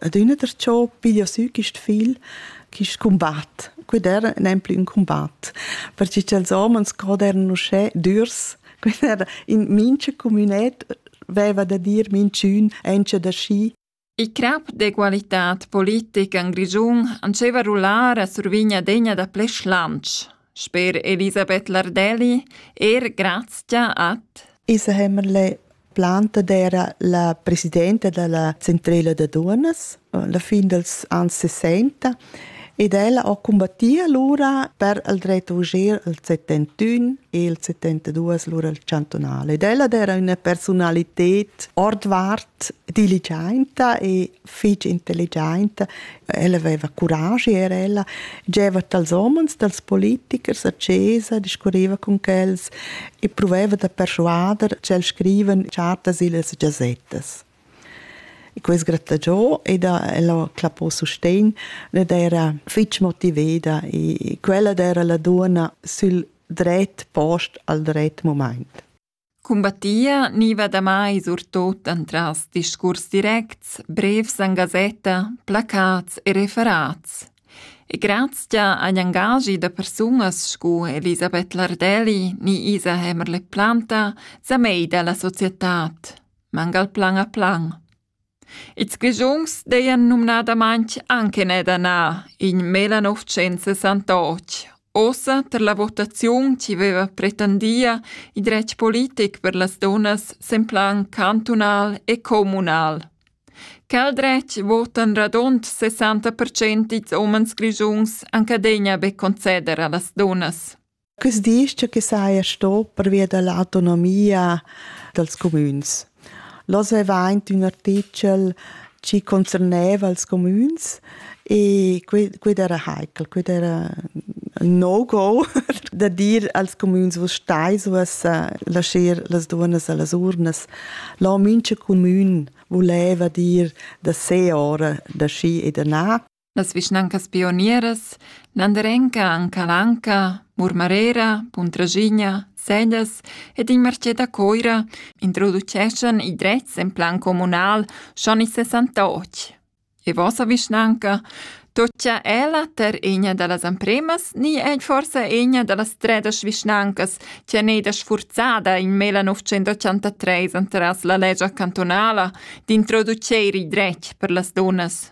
adüna der ciò piglia sü quist fil quist combat. Quid era nemplü ün combat, perche cha'ls homens god eran uschè dürs, quid era in mincha comünet veva da dir minchün encha da schi. Il crap d'egualità politica in Grischun andscheva rullar a survigna degna da ple schlanch. Sper Elisabeth Lardelli eir grazcha ad Isa Hämmerle planta d'eira la presidenta da la Centrela da dunas la fin dals ans sesenta ed ella ho cumbattì alura per il dret d'udir il settentün e il settentaduos lura il chantunal ed ella d'eira üna persunalited ordvart diligiainta e fich intelligent, ella aveva curaschi era ella, gieva dals homens, dals politichers a chesa, discurriva con quels e proveva da persuader ch'el scrivan chartas illas gazettas. E quest grattagiò ed ella clappò sustegn ed era fitg motiveda e quella era la duona sül dret post al dret moment. Cumbattia gniva damai surtot entras discurs directs, brevs en gasetta, placats e referats. E grazcha agl angaschi da persunas scu Elisabeth Lardelli ni Isa Hämmerle-Planta sa meida la societad, mangal plan a plan. Ils Grischuns dajan numnadamain anc eneda in 1968, ussa tar la votaziun chi veva pretendia il dretg politic per las dunnas sen plan cantunal e communal. Quel dretg votan radund 60% ils umens grischuns anc adegna be conceder a las dunnas. Quest disch che saja sto pervia da l'autonomia dals cumüns. L'hoz avaint ün artichel chi concerneva els cumüns e quid era heikel, quid era no-go da dir als cumüns vus stais uoss lascher las duonnas a las urnas. Là mincha cumün vuleva dir da se ora da schi e da na. Las vischnancas pionieras Landerenca an Calanca, Murmarera, Puntraschigna, Sellas ed il marchet da Coira introduceschan i drets en plan communal schon in 68. E vossa vischnanca toccia ella ter egna da las ampremas ni è forse egna da las tredas vischnancas che è neda sfurzada in mela 983 antras la legia cantonala d'introduceir i dretg per las dunas?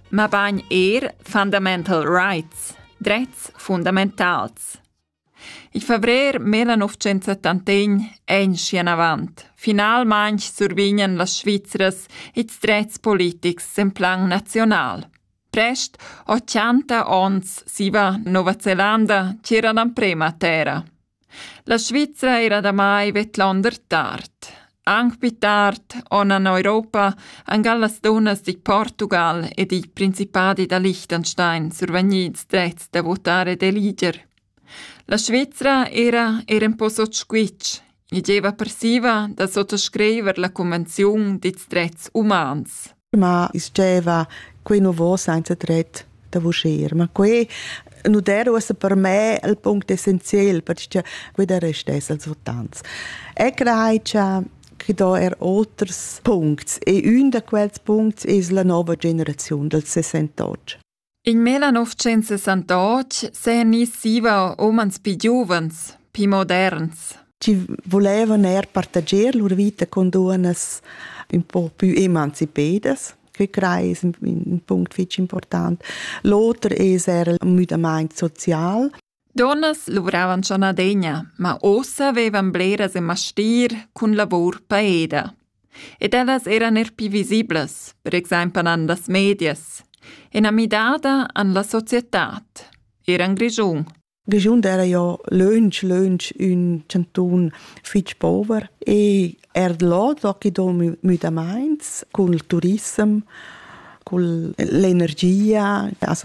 mabain er fundamental rights, drets fundamentals. Il febrer 1971 è in schienavant. Finalmain survignan las Svizras ils drets politics en plan nazional. Prest 80 onns siva Nova Zelanda c'era l'emprema terra. La Svizra eira damai vedlonder tard. Anc pli tard on an Europa angal las dunnas digl Portugal ed igl Principadi da Liechtenstein survegnids drets da votar ed eliger. La Svizra era er en po sot squitsch. I gieva persiva da sottoscriver la convenziun dits drets umans. ma diceva quei nu vo senza tret da vuscher ma quei nu der uossa per me il punct essenzial perché quei der restess als votants e crei cha che do er oters puncts e un da quels puncts es la nova generaziun dals 68 In millenovecentsessantotg s'eigniss zieva umans pii giuvens, pii moderns. Chi vulevan eir partager lur vita cun duonnas ün po pü emancipedas. Que crei es ün punct fich important. L'oter es eir ün müdamaint social. Dunnas luvravan schon adegna, ma ussa vevan bleras in mastir cun lavur paeda. Ed ellas eran er pi visiblas, per exempel an las medias. Ena midada an la societad. Eran Grischun. Grischun era jo lönch, lönch ün chantun fich pover e er là tocchi do müdamaints cul turissem, cul l'energia, also